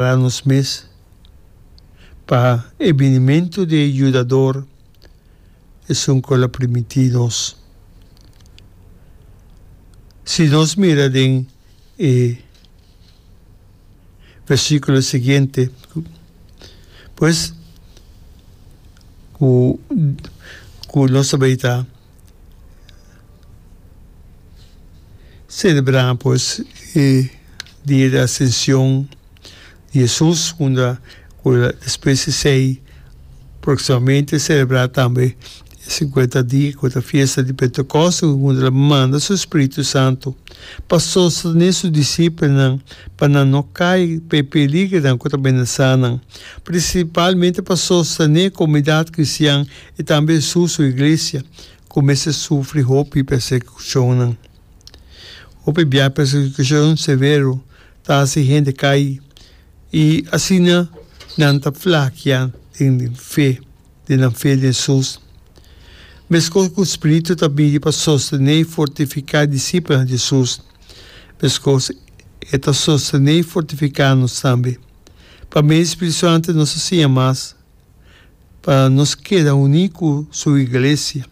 Prepara nos mes pa e binimentu di e Yudador esun ku el a primití nos. Si nos mira den e versíkulo siguiente, pues ku nos ta bai ta. Selebrá pues e dia di Asension di Hesus, unda cu ta despues di esey proximamente e selebrá tambe e sinkuenta dia cu ta fiesta di Pentecost, unda el a manda su Spiritu Santu pa sostene su disipelnan pa nan no cay pa e peligronan cu ta menasá nan, principalmente pa sostene e comunidad cristian. I tambe su su iglesia ku mester sufri hopi persekishonnan. Hopi bia persekishon severo ta hasi hende kai i asina nan ta flakia den fe, den nan fe den Jesus. Meskos ku Spiritu ta bini pa sostené i fortifiká disipelnan di Jesus, meskos e ta sostené i fortifiká nos tambe. Pa medio di Spiritu Santu nos ta siña mas. pa nos keda uní ku Su iglesia,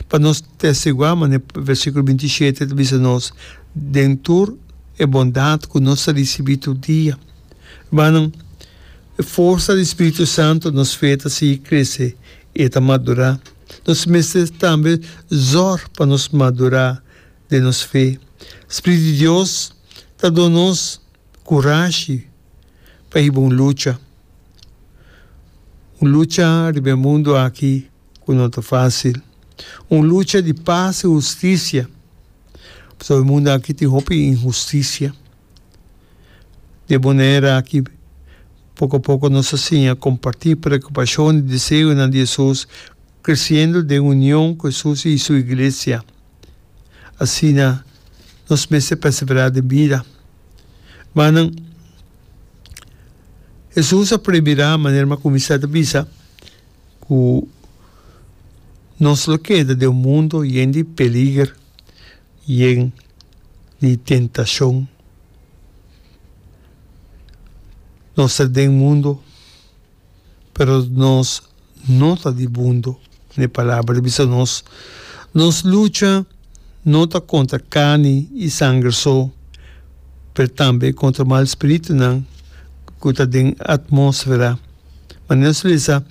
pa nos testiguá manera versíkulo binti i shete ta bisa nos, den tur e bondat ku nos ta risibí tur dia. Rumannan, e forsa di spiritu santu nos fe ta sigui krese i e ta madurá. Nos mester tambe zòrg pa nos madurá den nos fe. Spiritu di Dios ta duna nos kurashi. ta hiba un lucha. Un lucha riba e mundu aki ku no ta fásil. Un lucha di pas i hustisia, pasobra e mundu aki tin hopi inhustisia. Di e manera aki poko a poko nos a siña kompartí preokupashonnan i deseonan di Hesus, kresiendo den union ku Hesus i su iglesia. Asina nos mester perseverá den bida. Manan, Hesus a prohibirá manera m'a kuminsá ta bisa ku nos lo keda den un mundu yen di peliger, yen di tentashon. Nos ta den mundu. pero nos no ta di bundo n'e palabra di bisa nos. Nos lucha no ta kontra karni i sanger so, pero tambe kontra mal spiritunan ku ta den atmósfera. Ma nos a lesa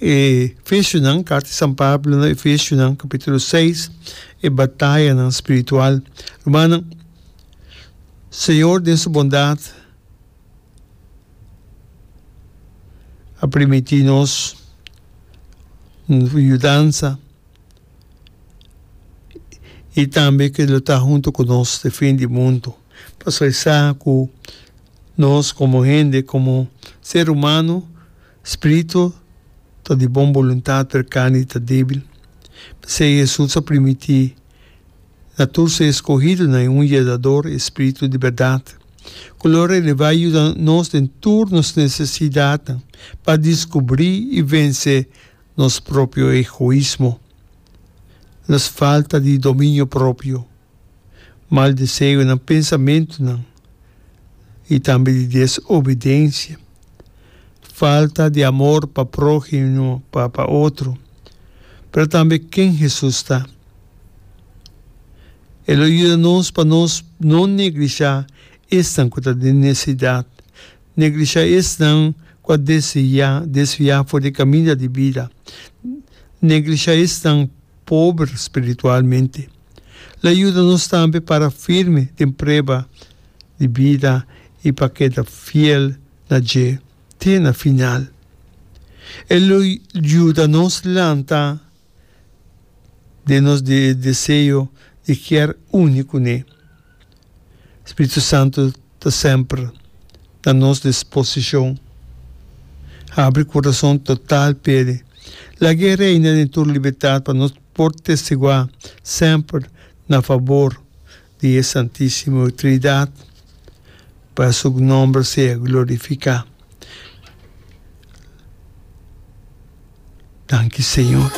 e Efesionan, karta di San Pablo na Efesionan, kapítulo seis, e batayanan spiritual. Rumannan, Señor den su bondat. a primiti nos yudansa i tambe ke lo ta huntu ku nos te fin di mundu. Pasobra e sa ku nos komo hende, komo ser humano, spiritu ta di bon boluntat, pero karni ta debil. P'esei Hesus a primiti. na tur su eskohidunan i un yedador e Spiritu di bèrdat, ku lo relevá i yuda nos den tur nos nesesidatnan pa diskubrí i vense nos propio egoismo, nos falta di dominio propio, mal deseonan, pensamentunan i tambe di desobidensia, falta di amor pa próhimo, pa otro. Pero tambe ken Hesus ta? E lo yuda nos pa nos no neglishá esnan ku ta den nesesidat, neglishá esnan ku a desviá desviá for di e kaminda di bida, neglishá esnan pober spiritualmente. Lo yuda nos tambe para firme den prueba di bida i pa keda fiel na dje te na final. E lo yuda nos lanta. den nos di deseo di kier uni kuné. Spiritu Santu ta semper na nos disposishon. Habri kurason total p'E. Laga E reina den tur libertat pa nos por testiguá semper na fabor di e Santisimo Trinidad pa su nomber sea glorifica. Danki Señor.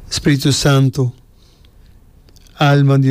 Spiritu Santo, alma di.